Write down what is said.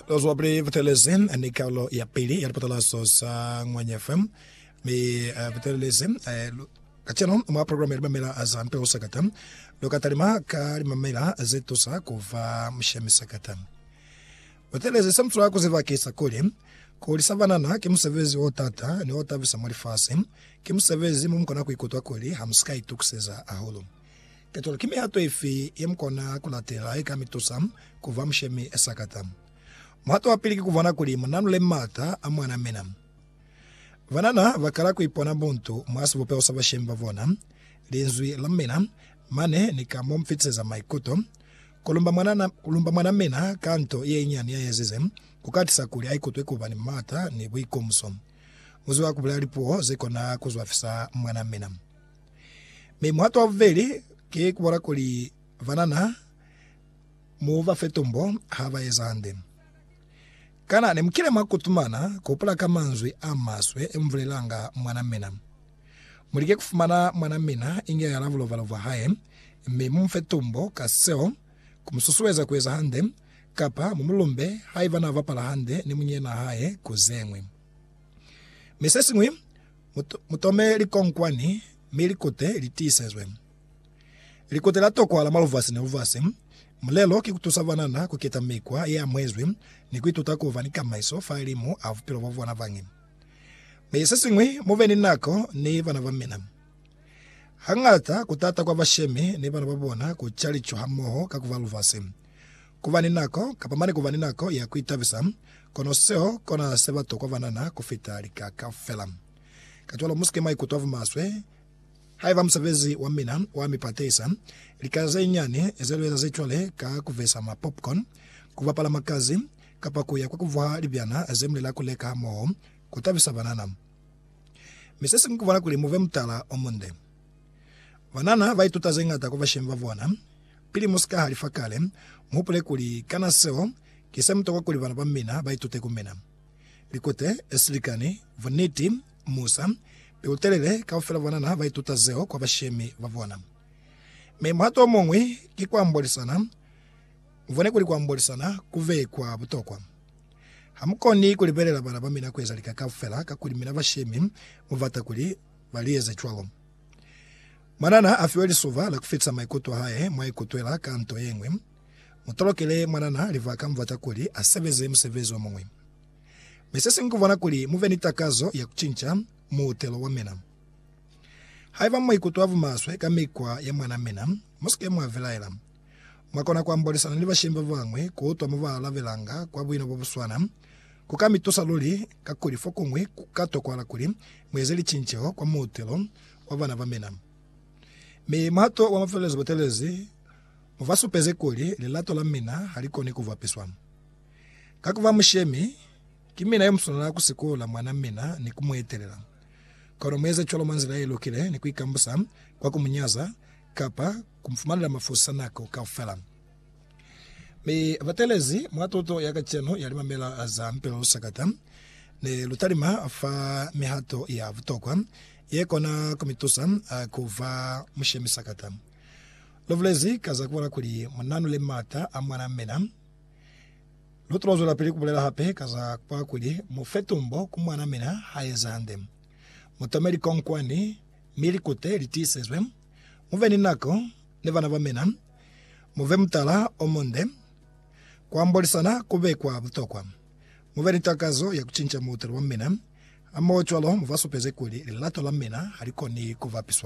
Those were Brave Teleze ni karolo ya pili ya lipatalazo za Ngwanya FM mi uh, Butelelezi eh, lu- kaceno mwa programu ya limamela za mpe ho sakata lo ka talima ka limamela ze tusa ku va mushemi sakata Butelelezi se mutula ku zibakisa kuli ku lisa banana ki musebezi o tata ni o tabisa mwa lifasi ki musebezi mo mu kona ku ikutwa kuli ha mu si ka itukiseza hahulu Petro, ki mihato ifi ye mu kona ku latela ye ka mi tusa ku ba mushemi esa kata? Muhato wa pili ki ku bona kuli mu nanule m'ata a mwan'a mina. Banana ba kala ku ipona buntu mwa sibupeho sa bashemi ba bona, linzwi la mina, mane ni ka mo mu fitiseza maikuto. Ku lumba mwanana, ku lumba mwan'a mina ka nto ye inyani ya ezize, ku ka tisa kuli a ikutwe ku ba ni m'ata ni buikomuso. Mu ziba ku bulela lipuo ze kona ku zwafisa mwan'a mina. Mi muhato wa bubeli ki kubona kuli banana mu ba fe tombo ha ba eza hande. Kana nemukile mwa kutumana ku hupula ka manzwi a maswe e mubulelanga mwan'a mina? Mulike kufumana mwan'a mina inge yala bulobalo bwa hae, mi mu mufe tombo ka seo, ku mususueza ku eza hande, kapa mu mulumbe haiba na bapala hande ni munyena'a hae ku zeñwi. Mi sesiñwi, Mutome likonkwani mi likute li tiisezwe. Likute la tokwa la maluvasi ni luvasi. Mulelo ki ku tusa banana ku keta mikwa ye amuhezwi ni ku ituta ku ba ni kamaiso fa limu a bupilo bwa bona bañi. Mi se siñwi, mu be ni nako ni bana ba mina. Hañata ku taata kwa bashemi ni bana ba bona ku calicuha moho ka ku ba luvasi. Kuba ni nako, kapa mane kuba ni nako ya kuitabisa, kono seo kona se batokwa banana kufita lika kaufela. Kacwalo musike mwaikutwa bumaswe haiba musebezi wa mina wa mi patehisa lika zenyinyani zelueza zecwale ka kuvesa ma popcorn, kubapala makazi, kapa kuya kwa kuvuha libyana zemulela kuleka moho kutabisa banana. Mi sesiñwi kubona kuli muve mutala omunde. Banana ba ituta ze ñata ku bashemi ba bona. Pili mu si ka halifa kale, mu hupule kuli, Kana seo ki se mu tokwa kuli bana ba mina ba itute ku mina? Likute, silikani, buniti, musa, pilu-telele, kaufela banana ba ituta zeo kwa bashemi ba bona. Mi muhato o muñwi ki ku ambolisana. Mu bone kuli ku ambolisana ku be kwa butokwa. Ha mu koni ku libelela bana ba mina ku eza lika kaufela kakuli mina bashemi mu bata kuli ba li eza cwalo. Mwanana a fiwa lisoba la ku fetisa maikuto a hae mwa ikutwela ka nto ye ñwi. Mu talukele mwanana libaka mubata kuli a sebeze musebezi o muñwi. Mi se siñwi ku bona kuli mu be ni takazo ya ku cinca muutelo wa mina. Haiba mwa ikutwa bumaswe ka mikwa ya mwan'a mina, mu si ke mwa vilaela. Mwa kona ku ambolisana ni bashemi ba bañwi, ku utwa mo ba alabelanga kwa buino bo bu swana, Ku ka mi tusa luli, kakuli fokuñwi ku ka tokwahala kuli mu eze licinceho kwa muutelo wa bana ba mina. Mi muhato wa mafelelezo bo telezi u ba supezi kuli lilato la mina ha li koni ku vwapiswa. Ka ku ba mushemi, ki mina yo mu swanela ku sikola mwan'a mina ni ku mu etelela. Kono mu eze cwalo mwa nzila ye lukile ni ku ikambusa kwa ku mu nyaza kapa ku mu fumanela mafusa nako kaufela. Mi batelezi mwa tuto ya kacenu ya limamela za Mpela Lusakata, ne lu talima fa mihato ya butokwa ye kona ku mi tusa ku ba mushemi sakata. Lu bulezi ka za ku bala kuli mu nanule m'ata a mwan'a mina. Lu tulo zwelapili ku bulela hape ka za ku bala kuli mu fe tumbo ku mwan'a mina ha ezi hande. Mu tome likonkwani mi likute li tiisezwe. Mu be ni nako ni bana ba mina, mu be mutala o munde. Ku ambolisana ku be kwa butokwa. Mu be ni takazo ya ku cinca muutelo wa mina, hamohocwalo mu ba supeze kuli lilato la mina ha li koni ku bapiswa.